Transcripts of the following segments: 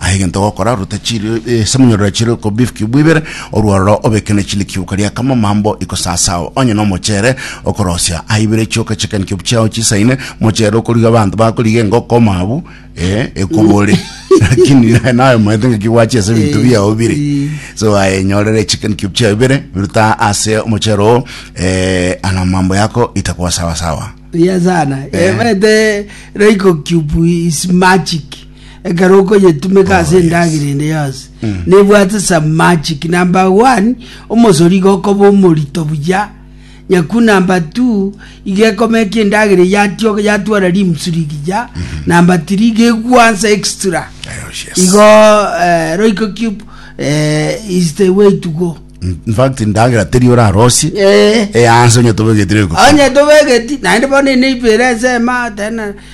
Aye egento ogokora, ruta chiri ase emonyororo ya chiriko bifuki bibere, orwororo obeke ne chinde kiuka ria kamamambo iko sasao, onye nomochere okorosia. Aye ibere chioka chi'ekanikebu chiao chisaine, mochere okoriga abanto bakoriga engoko omoabu, ee, ekobore. Lakini naye nayomaete ngaki gwache ase ebinto biao bire. So aye enyorere echi'ekanikebu chiao ibere, biruta ase omochere oo, ee, amamambo yako itakoa sawasawa. Buya sana. Eh. Emete Royco Cube is magic. ekero okonyetumeka ase endagera ende yonsi nebwate some magic number one omosori iga okoba omorito buya nyaku number two iga ekomeka endagera eye yatioka yatwara limbs rigiya number three iga egwansa extra igo eh, roiko cube eh, is the way to go in fact ndagera teri orarosie Eh. eyanse onye tobegetire iko onye tobegeti naende bono ene ibere ensema tena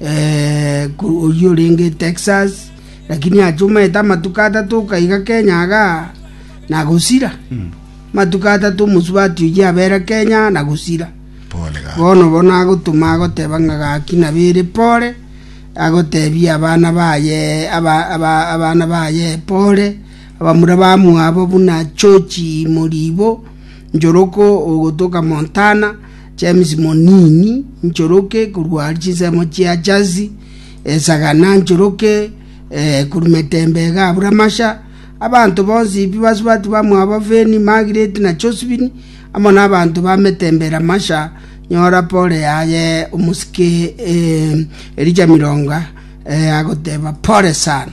eh, ku- oyio orenge texas lakini achumaete amatuko atato okaiga kenya aga nagosira matuko atato omosubati oyio abera kenya nagosira pole ga bono bono agotuma agoteba ng'a gaki nabere pore agotebia abana baye aba- aba- abana baye pore abamura bamwabo buna chochi moribo njoroko ogotoka montana James Monini, nchoroke korwa chinsemo chia Jazi, esagana nchoroke korwa metemba ega abura masha, abanto bonsi Ipibasibati bamwabo Feni, Magireti, na Josifini, amo nabanto ba metemba era masha, nyora pore yaye omosike Elija Mironga agoteba, Pore sana.